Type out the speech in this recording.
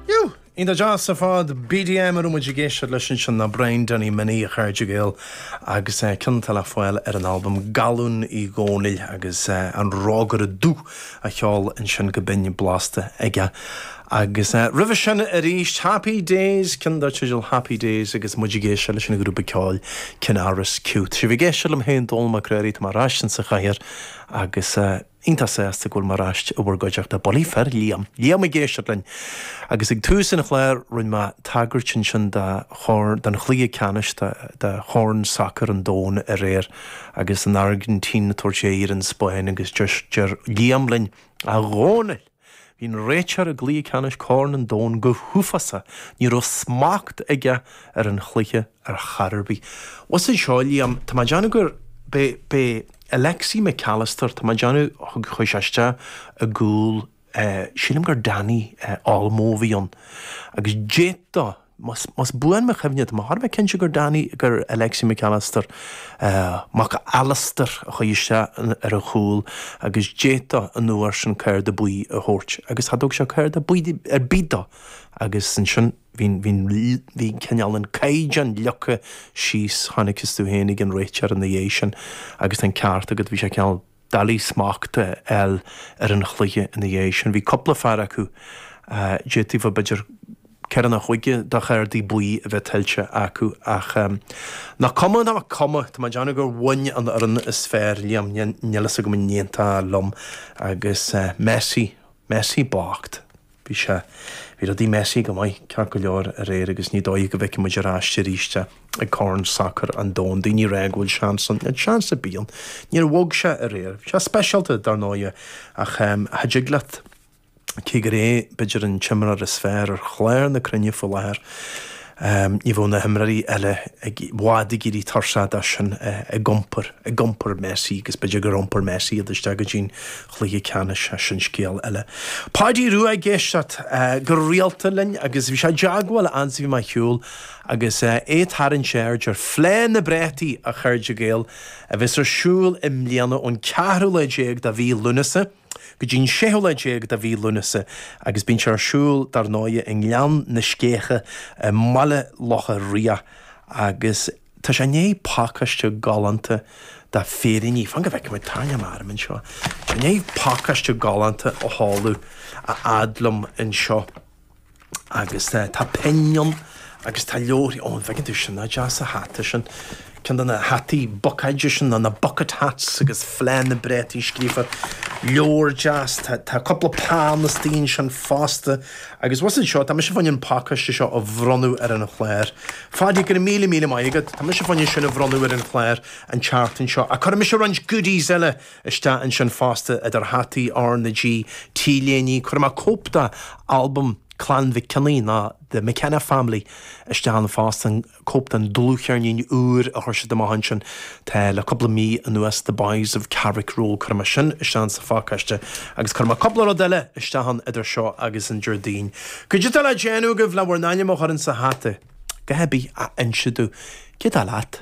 Jú! Iontach deas ar fad! BDM a raibh muid ag éisteacht leis ansin ná Brian Danny Minnie, a chairde Gael, agus cionn atá le fáil ar an albam Gallún Uí Dhónaill agus an rógaire dubh a cheol ansin go binn blasta aige. Agus roimhe sin arís Happy Days, cionn dar teideal Happy Days agus muid ag éisteacht leis an ghrúpa ceoil Kinnaris Q. Tá sibh ag éisteacht liom féin, Dónall Mac Ruairí, tá mé ar ais insa chathaoir agus. Iontach sásta go bhfuil mé ar ais i bhur gcuideachta. Bulaí fir Liam. Liam ag éisteacht linn! Agus ag tús an chláir rinne mé tagairt ansin do Chorn, don chluiche ceannais de, de Chorn Sacair an Domhain aréir agus an Airgintín ag tabhairt aghaidh ar an Spáinn agus deir, deir Liam linn, A Dhónaill! Bhí an réiteoir i gcluiche ceannais Corn an Domhain go huafásach, ní raibh smacht aige ar an chluiche ar chor ar bith. Bhfuil a fhios agat seo, Liam, tá mé ag déanamh gur, b'é, b'é Alexi Mac Allister, tá mé ag déanamh, thug, chuaigh sé isteach i gcúl, sílim gur Dani Olmo a bhí ann, agus d'fhéadfadh, Más buan mo chuimhne, tá mé thar a bheith cinnte gur Dani, gur Alexi McAllister, mac Alastair, a chuaigh isteach ar an chúl agus d'fhéadfá an uair sin cárta buí a thabhairt. Agus cha dtug sé cárta buí ar bith dó. Agus ansin bhí cineál an caighdeán leagtha síos, tháinig tú féin ag an réiteoir ina dhiaidh sin agus tá an ceart agat, bhí sé cineál doiligh smacht a fháil ar an chluiche ina dhiaidh sin. Bhí cúpla fear acu, d'fhéadfaí b'fhéidir ceithre nó cúig de chártaí buí a bheith tuillte acu ach nach cuma, nach cuma, tá mé ag déanamh gur bhain an fhoireann is fearr, Liam, níl a fhios agam an aontófá liom agus Messi, Messi bocht. Bhí sé. Bhí rudaí messy go maith, ceart go leor, aréir agus ní dóiche go bhfeicfidh muid ar ais arís é ag Corn Sacair an Domhain. Daoine ag rá go bhfuil seans ann. An seans a bhí ann. Níor bhog sé aréir. Bhí sé speisialta, dar ndóigh, ach cha dtig leat, cé gur é b'fhéidir an t-imreoir is fearr ar chlár na cruinne faoi láthair, Ní bheadh na himreoirí eile i bhfad ag éirí tuirseach de sin ag iompar, ag iompar Messi agus b'fhéidir gur iompar Messi iad isteach go dtí'n chluiche ceannais, ach sin scéal eile. Páidí Rua ag éisteacht go rialta linn agus bhí sé i dteagmháil fhad 's bhí mé ar shiúl agus é ag tarraingt aird ar Fleadh na bPréataí, a chairde Gael, a bheas ar siúl i mbliana ón ceathrú lá déag de mhí Lúnasa. go dtí an séú lá déag de mhí Lúnasa agus bíonn sé ar siúl dar ndóigh i nGleann na Sceiche i mBaile Locha Riach agus tá sé i ndiaidh pacáiste galánta de féiríní, fan go bhfeicfidh muid, tarraingeoidh mé orm anseo, tá sé i ndiaidh pacáiste galánta a sheoladh a fhad liom anseo. Agus tá pinn ann agus tá leabharthaí, ó an bhfeiceann tú, sin, nach deas an hata sin, ceann de na hataí bucáide sin, nó na bucket hats agus Fleá na bPréataí scríofa, leabhar deas, tá cúpla peann istigh ansin fosta. Agus abhus anseo, tá mise chun an pacáiste seo a bhronnadh ar an chlár. Fáilte, go raibh míle míle maith agat, tá mise chun é sin a bhronnadh ar an chlár an tseachtain seo, ach cuirfidh mise roinnt goodies eile, isteach ansin fosta idir hataí R na G, T-léiní, cuirfidh mé cóip de albam Clann Mhic Cionnaith nó The McKenna Family isteach ann fosta, cóip den dlúthcheirnín úr a chuir siad amach ansin tá le cúpla mí anuas The Boys of Carrickroe, cuirfidh mé sin isteach ann sa phacáiste agus cuirfidh mé cúpla rud eile isteach ann idir seo agus an Déardaoin. Cad é atá le déanamh agaibh le bhur n-ainm a chur insa hata? Caithfidh sibh a inse domh cad é atá leat.